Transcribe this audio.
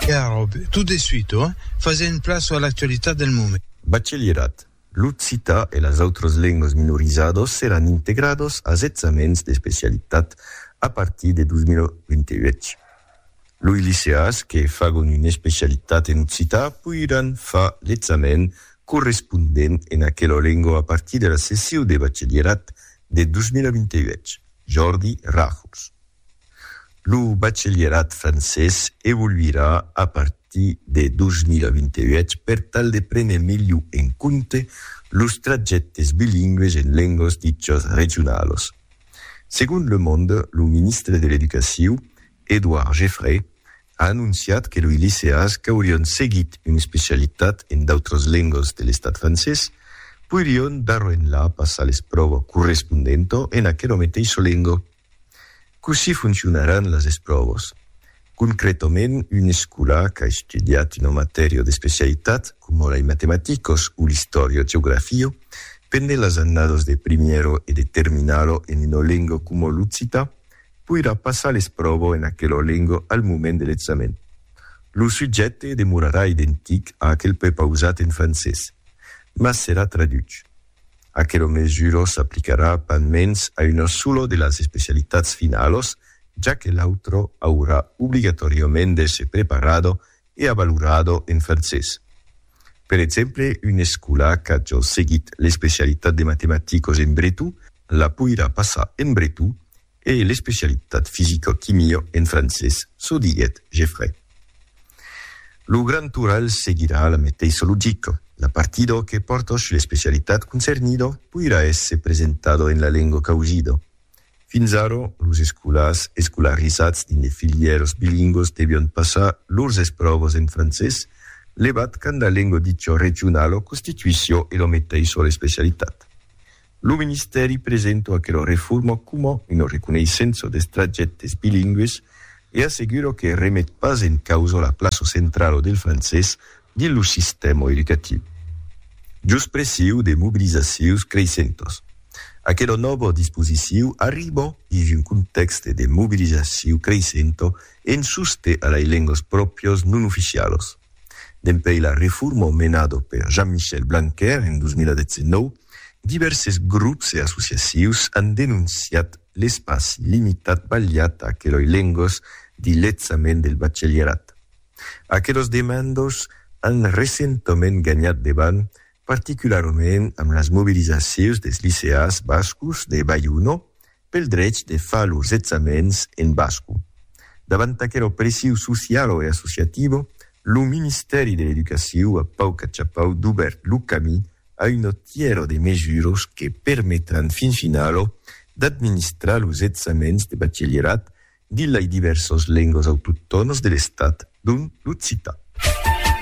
Era ròbe, tot de suite, ohh! Fasent plaça a l'actualitat del moment. Bachelierat, l'occitan e las autras lengas minorizadas seràn integradas as examens d'especialitat a partir de 2028. Loi liceas que fagon una especialitat en occitan poiràn far l'examen correspondent en aquela lenga a partir de la sessiu de bachelierat de 2028, Jordi Ràjols. Lo bachelierat francés evoluirà a partir de 2028 per tal de prene melhor en compte los trajèctes bilingües en lengas dichas regionalas. Segon Le Monde, lo ministre de l'Educaciu, Edouard Geffray, a anonciat que loi liceas qu'aurián seguit una especialitat en d'autras lengas de l'estat francés poirián d'aro enlà passar l'espròva correspondenta en aquela meteissa lenga. Cossí foncionaràn las espròvas? Concrètament, un escolar qu'a estudiat una matèria d'especialitat, coma las matematicas o l'istòria geografia, pendent las annadas de primièra e de terminala en una lenga coma l'occitan, poirà passar l'espròva en aquela lenga al moment de l'examen. Lo subjècte demorarà identic a aquel prepausat en francés, mas serà traduch. Aquelo mesuro s'aplicarà pas mens a una sola de las especialitats finalos, ja que l'autro aurà obligatòriament d'èsser preparado e avalorado en francés. Per exemple, un escolà qu'a jos seguit l'especialitat de matematicos en breton la poirà passar en breton E l'especialitat fisicoquimio en francés, çò diguèt Geffray. Lo grand toral seguirà la meteissa logica, la partidor que portosch l'especialitat concernido poirà èsser presentado en la lenga causida. Fins ara, los escolars escolarizats dins de filièras bilingüas devián passar lors espròvas en francés, levat quand la lenga dicha regionala constituissiá ela meteissa l'especialitat. Lo ministèri presento aquela reforma coma una reconeissença dels trajèctes bilingües e assegura que remet pas en causa la plaça centrala del francés dins lo sistèma educatiu. Jos pressiu de mobilizacions creissentas, aquela nòva disposiciu arriba dins un contèxte de mobilizaciu creissenta en sosten a lei lengas pròprias non oficialas. Dempuèi la reforma menada per Jean-Michel Blanquer en 2019, divèrses grops e associacius an denonciat l'espaci limitat balhat a aqueloi lengos dins l'examen del bachelierat. Aquelos demandos an recentament ganhat de band, particularament amb las mobilizacius des liceas bascos de Baiuno Pel drech de far lors examèns en basco. Davant aquela opressiu socialo e associativo, lo Ministèri de l'Educaciu a pauc achapau dubèrt lo camí a una tièra de mesuras que permetràn fin finalo d'administrar los examèns de bachelierat dins lai divèrsas lengas autoctònas de l'Estat, dont l'occitan.